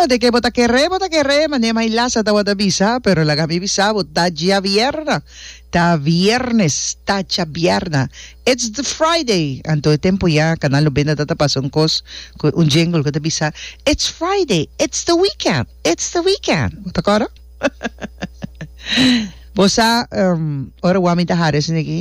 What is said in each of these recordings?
Ora ke bo ta kere bo ta kere mane mai lasa ta bo ta bisa pero laga mi bisa bo ta dja bierna ta biernes ta dja bierna it's the Friday anto e tempo ya kanal lo benda ta ta pasa un kos ku un jingle ku ta bisa it's Friday it's the weekend it's the weekend bo ta kòrda bo sa ora wak mi ta hara esei aki.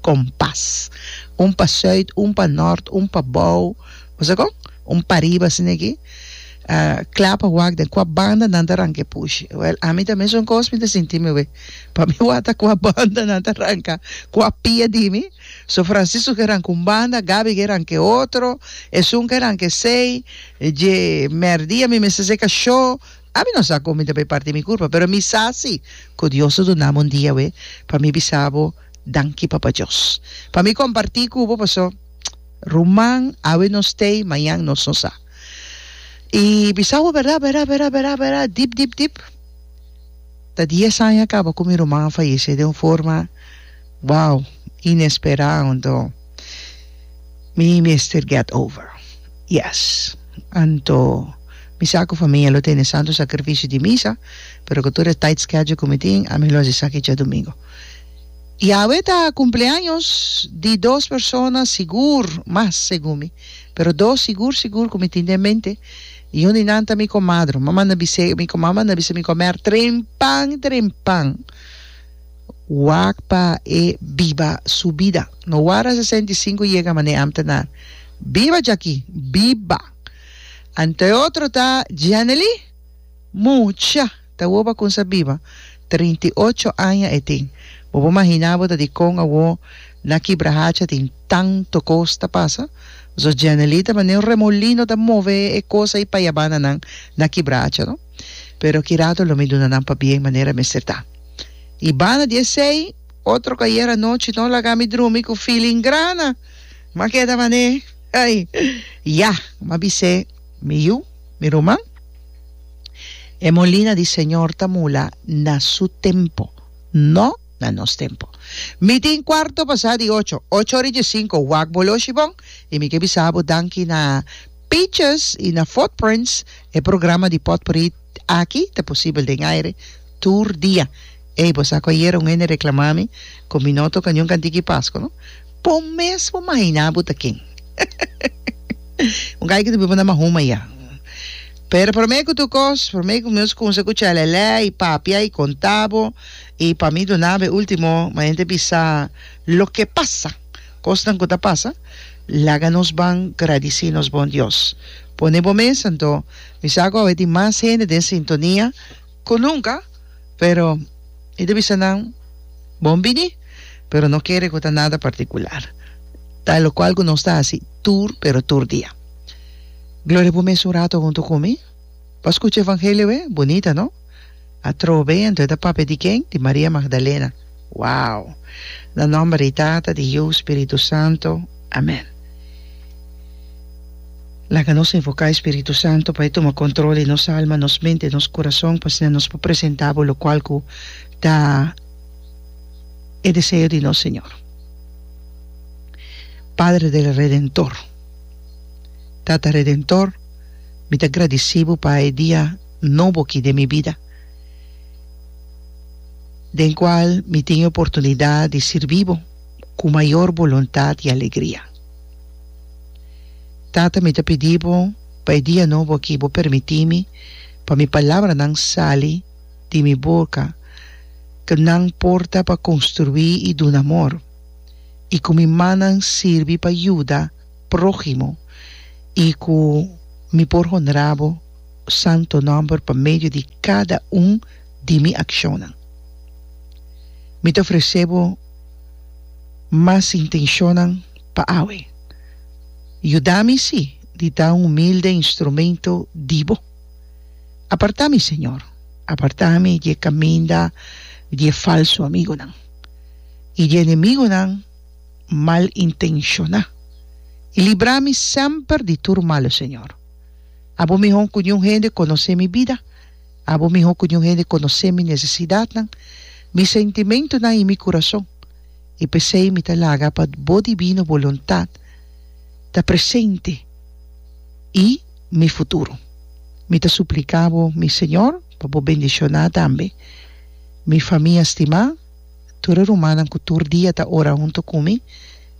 kompas. Un pa sùit, un pa nòrt, un pa bou, bo sa kon? Un pa riba asina aki. Kla pa wak den kua banda nan ta ranka e pushi. Wèl, ami ta mesun kos mi ta sinti mi awé. Pa mi wata kua banda nan ta ranka kua pia di mi. So Francisco ke ranka un banda, Gabi ke ranka e otro, esun ke ranka esei, dje mèrdia mi mester ser kashó. Ami no sa kon mi ta bay partí mi kurpa, pero mi sa sí ku Dios ta duna mi un dia awé pa mi bisa bo. Danki Papa Dios pa mi comparti cu bo paso ruman awe no stay mañan nos no sa y bisa bo bera bera bera bera bera dip dip dip ta dies aña caba cu mi ruman a fayece den un forma wow inespera anto mi mester get over yes anto mi sa cu famia lo tene santo sacrificio di misa pero cu tur e tight schedule cu mi tin ami lo haci esaki djadomingo. Y awe ta cumpleaños di dos persona sigur, mas segun mi, pero dos sigur sigur cu mi tin den mente. Y un di nan ta mi comadre. Mama na bis'é, mi comama na bis'é mi comer trempan trempan wak pa e biba su bida. No warda sesenta y sinku yega mane am ta na biba djaki, biba. Anto e otro ta Djanely, mucha. Ta woba con sa biba. Trinta i ocho aña e tin. Bo por mahina bo ta di con awo na kibrahacha tin tanto cos ta pasa? Zo Jeanely ta mane un remolino ta move e cosa y payabana nan na kibrahacha no. Pero ki rato lo mi duna nan pa bien manera mester ta. Y bana di esey otro cu ayer anochi no laga mi drumi cu feeling grana. M'a keda mane. Ay! Ya! M'a bis'é mi yu, mi ruman. E molina di Señor ta mula na su tempo, no na nos tempo. Mi tin cuarto pasá di ocho, ocho ora y diescinco, wak bo loshi bon, y mi ke bisa bo danki na Peaches y na Footprints, e programa di potpourri aki ta posibel den aire tur dia. Ey, bo sa cu ayera un hende reclama mi cu mi no toca niun cantica di Pascua, no? Bo mesmo mahina bo ta ken. Un gay cu ta biba na Mahuma ya. Pero prome cu tur cos, prome cu mi nos cunsa cu chelele y papia y conta bo, y pa mi duna bo e ultimo manera di bisa loke pasa, cosnan cu ta pasa, laga nos ban gradici nos bon Dios. Pone bo mesa, anto mi sa cu awe tin mas hende den sintonia. cu nunca, pero i ta bisa nan, Bon bini, pero no kere cu ta nada particular. Ta e locual cu nos ta haci tur, pero tur dia. Gloria, bo mes un rato hunto cu mi? Bo a scucha e Evangelio e? Bunita, no? Atrobe, anto e ta papia di ken? Di Maria Magdalena. Wow. Na nomber di Tata, di Yu, Spiritu Santo. Amen. Laga nos invoca e Spiritu Santo pa e tuma control di nos alma, nos mente, e nos curason, pa asina nos por presenta Bo locual cu ta e deseo di nos Señor. Padre del Redentor, Tata Redentor, mi ta gradici Bo pa e dia nobo aki den mi bida. den cual mi tin e oportunidad di sirbi bo cu mayor boluntad y alegria. Tata mi ta pidi bo pa e dia nobo aki bo permiti mi pa mi palabranan sali di mi boca cu nan porta pa construi y duna amor y cu mi mannan sirbi pa yuda proximo y cu mi por honra bo santo nòmber pa medio di kada un di mi akshonnan. Mi ta ofresé bo mas intenshonnan pa awe. Yuda mi si di ta un humilde instrumento di bo. Apartá mi, Señor, apartá mi di e kaminda di e falsu amigunan i di e enemigunan mal intenshoná, i libra mi semper di tur malu, Señor. Abo mihó ku niun hende konosé mi bida. Abo mihó ku niun hende konosé mi nesesidatnan, mi sentimentunan i mi kurason. I p'esei mi ta laga pa bo dibino boluntat ta presente i mi futuro. Mi ta supliká bo, mi Señor, pa bo bendishoná tambe mi famia stimá, tur e rumannan ku tur dia ta ora huntu ku mi,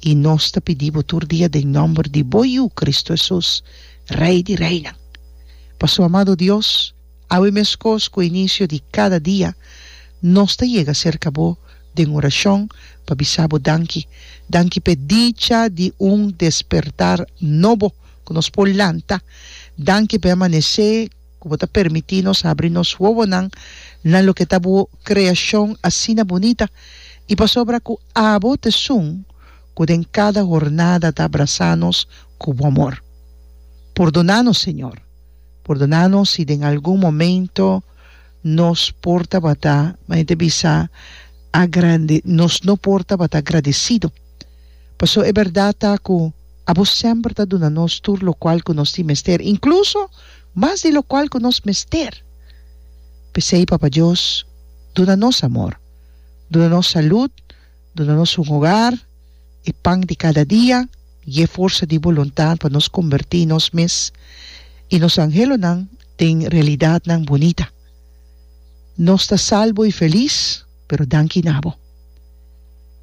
I nos ta pidi bo tur dia den nòmber di bo Yu, Kristu Hesus, Rei di reinan. Paso, amado Dios, awe meskos ku e inisio di kada dia, nos ta yega serka bo den orashon pa bisa bo danki. Danki p'e dicha di un despertar nobo ku nos por lanta. Danki p'e amanesé. ku bo ta permití nos habri nos wowonan na loke ta bo kreashon asina bunita, i pasobra ku abo ta esun ku den kada hornada ta abrasá nos ku bo amor. Pordoná nos, Señor. Pordoná nos si den algun momento nos por tabata, maña ta bisa, agrande, nos no por tabata agradesido. Pasó e bèrdat ta ku abo semper ta duna nos tur lokual ku nos tin mester, inkluso mas di lokual ku nos mester. P'esei, Papa Dios, duna nos amor, duna nos salud, duna nos un hogar, e pan di kada dia i e forsa di boluntat pa nos kombertí nos mes i nos anhelonan den realidatnan bunita. Nos ta salbo i felis, pero danki na bo.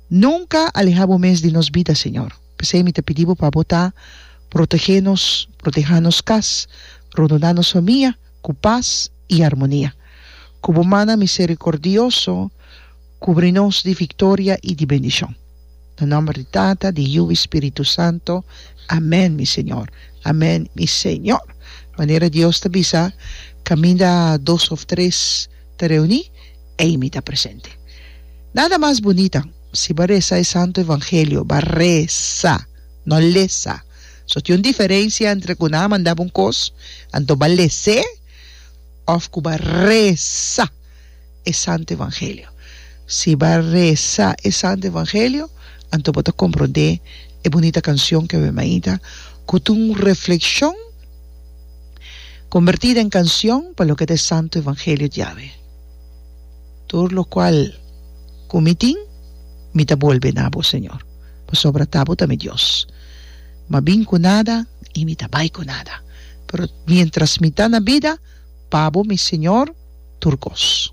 Nunka alehá bo mes di nos bida, Señor. P'esei mi ta pidi bo pa bo ta protegé nos, protehá nos kas, rondoná nos famia ku pas i armonia. Ku bo mannan miserikordioso kubri nos di viktoria i di bendishon. Na nòmber di Tata, di Yu i Spiritu Santu, amèn, mi Señor. Amèn, mi Señor. Manera Dios ta bisa, Kaminda dos òf tres ta reuní, ei mi ta presente. Nada mas bunita. Si bo a resa e Santu Evangelio, bo a resa, no lesa. So tin un diferensia entre ku nan a manda bo un kos, anto bo a les'é, òf ku bo a resa e Santu Evangelio. Si bo a resa e Santu Evangelio, anto bo ta komprondé e bunita kanshon ke awor mainta ku ta un reflekshon kombertí den kanshon pa loke ta e Santu Evangelio di Yahweh. Tur lo cual cu mi tin, mi ta bolbe na bo, Señor, pasobra ta bo ta mi Dios. M'a bin cu nada y mi ta bai cu nada, pero mientras mi ta na bida, pa bo mi Señor tur cos.